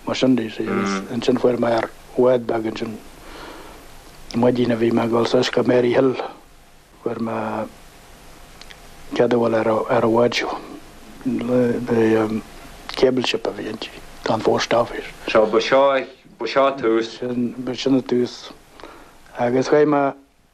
Mar sin de, ansin fuair mé ar bhád beag ansin, an mhaidin a bhí mé ag dul suas go Mary Hill, fuair mé cead a dhul ar an bhád seo, cable ship a bhí inti, don Phost Office. So, ba seo, ba seo tús. Sin, sin an tús. Agus chuaigh mé.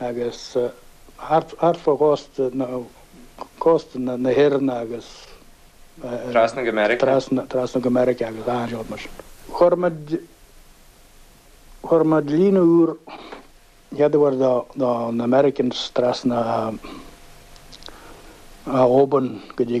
agus thart fá chósta na hÉireann agus trasna go Meiriceá. Chuir muid líne úr an chéad uair do na Americans trasna ó Oban go dtí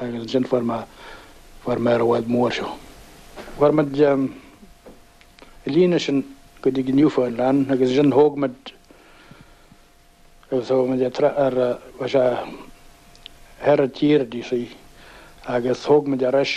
agus ansin fuair mé, fuair mé ar an bhád mór seo. Chuir muid an líne sin go dtí go Newfoundland agus ansin thóg muid, agus thóg muid ar, ar, bhí sé thoir an tír a dtí sí agus thóg muid ar ais,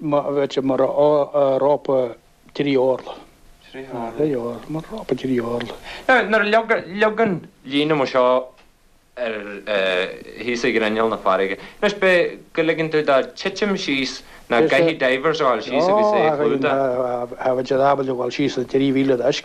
B'fhéidir mar rópa trí orlach. Trí orlach. Mar rópa trí orlach. Nuair a leagann líne mar seo thíos ar ghrinneall na farraige, anois ab é go ligeann tú dó titim síos nó an gcaithfidh divers a ghabháil síos agus é a chlúdach. B'fhéidir ábalta a ghabháil síos na 3,000 daisc.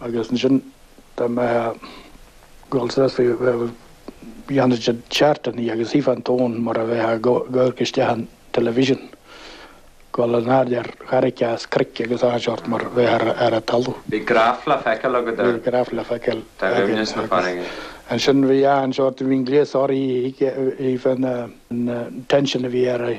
agus ansin dá mbeifeá ag gabháil sásta dhéanfadh siad chartlann í agus tchífeá an tóin mar a bheifeá ag amharc isteach ar an television, ag gabháil in airde ar charraig a's cnoic agus achan seort mar a bheifeá ar a' talamh. Bhí graif le feiceáil agad ar dhoimhneas na farraige. Ansin bhí achan seort, bhí an gléas áirithe a thuigfeadh an tension a bhí ar a'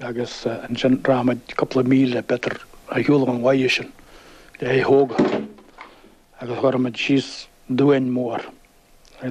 agus ansin rachadh muid cúpla míle, b'fhéidir, ar shiúl ón bhaile sin le é a thógáil, agus chuirfeadh muid síos duán mór.